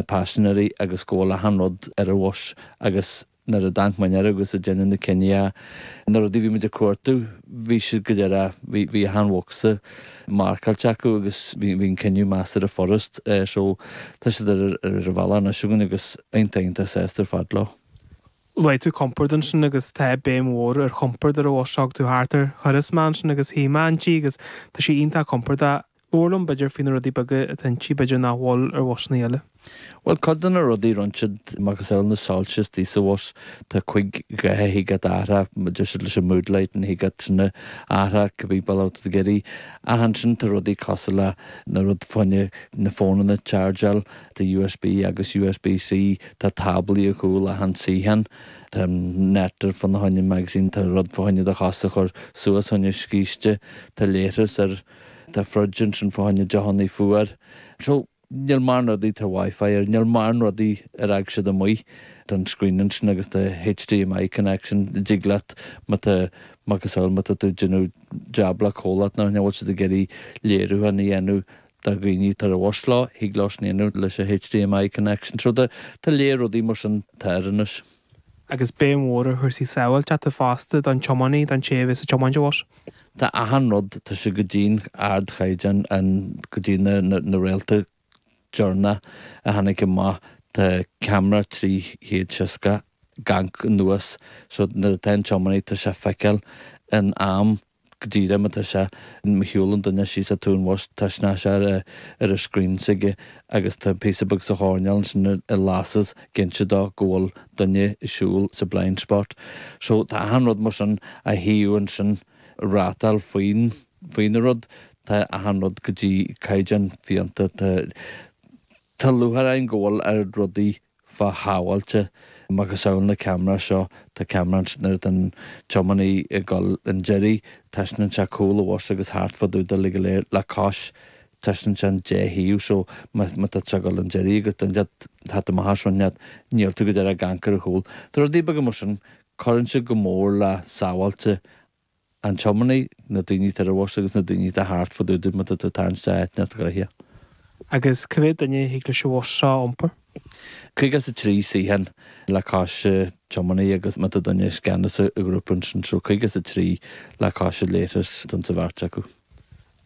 na paisinéirí agus go bhfuil achan rud ar an bhus agus nuair a d'amharc muid air agus ag déanamh na cinní a, na rudaí a bhí muid a chuartú, bhí siad go léir a, bhí, bhí achan bhocsa marcáilte acu agus bhí, bhí an cinneadh measartha furast. Eh so, tá siad ar, ar an bhealach anois againn agus iontach, iontach sásta ar fad leo. Luaigh tú compord ansin agus tá béim mhór ar chompord ar an bhus seo agus tú thart ar thuras mé ansin agus thiomáin tú í agus tá sé iontach compordach. Labhair liom b'fhéidir faoi na rudaí beaga atá inti b'fhéidir nach bhfuil ar bhusannaí eile. Bhuel cuid de na rudaí roinnt siad mar cosúil le na soilse istigh sa bhus, tá cúig dhath a thig leat a athrú, deir siad leis an mood light go dtig leat iad a athrú cibé bealach atá tú ag iarraidh. Ach ansin tá rudaí cosúil le na rud fá choinne na fónanna a chargeáil, tá USB agus USB C, tá táblaí ar chúl achan suíochán, tá an net ar fud na fá choinne magazine, tá rud fá choinne do chos a chur suas fá choinne scíste, tá leithreas air. Tá fridge ansin fá choinne deochannaí fuar. So, níl mórán rudaí, tá WiFi air, níl mórán rudaí ar fhág siad amuigh. Tá an screen ansin agus tá HDMI connection a dtig leat má tá macasamhail má tá tú ag déanamh jab le comhlacht nó thing a bhfuil siad ag iarraidh léiriúchán a dhéanamh do dhaoine atá ar an bhus leo, thig leo sin a dhéanamh leis an HDMI connection. So, tá lear rudaí mar sin, tá air anois. agus béim mhór ar chúrsaí sábháilteachta fosta don tiománaí, don té a bheas ag tiomáint an bhus. Tá achan rud tá sé go dtí an ardchaighdeán, an go dtí na na rialacha deireanacha a tháinig amach, tá ceamara 360 ag amharc anuas, so nuair atá an tiománaí tá sé ag feiceáil in am, Go dtí mar tá sé má shiúlann duine síos taobh an bhus taispeánann sé ar a' scrín s'aige agus tá píosa beag sa choirnéal ansin a lasas ag inse dó go bhfuil duine a' siúl sa blind spot so tá achan rud mar sin a shuíodh ansin rátáil faoin, faoina rud, tá achan rud go dtí caighdeán fiánta, tá, tá lúcháir orainn go bhfuil ár rudaí fíorshábháilte. Macasamhail na ceamaraí seo, tá ceamara nuair atá an tiománaí ag dul chun deiridh, taispeánann sé cúl an bhus agus thart fá dtaobh de le go léir, le cois, taispeánann sé an dá thaobh so má tá tú ag dul chun deiridh agus duine ag teacht thart amach as roinn leat, níl tú go díreach ag amharc ar an chúl. Tá rudaí beaga mar sin, cuireann sé go mór le sábháilte an tiománaí, na daoine atá ar an bhus agus na daoine atá thart fá dtaobh de, má tá tú atá an stá áit inteacht gnaitheach. Agus cé mhéad duine a thig leis an bhus seo a iompar? 53 suíochán le cois tiománaí agus má tá duine i gceannas an ghrúpa ansin so 53 le cois a leithreas don sa bheirt acu.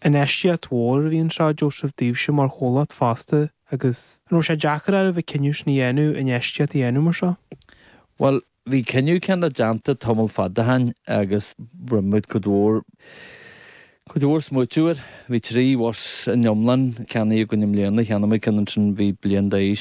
Infheistíocht mhór a bhí anseo a Joseph daoibhse mar chomhlacht fosta agus an raibh sé deacair ariamh an cinneadh sin a dhéanamh, infheistíocht a dhéanamh mar seo? Bhuel, Bhí cinneadh céanna déanta tamall fada ó shin agus rinne muid cuid mhór cuid mhór smaoitiú air. Bhí trí bhus in iomlán ceannaithe againn i mbliana, cheannaigh muid ceann ansin a bhí bliain d'aois.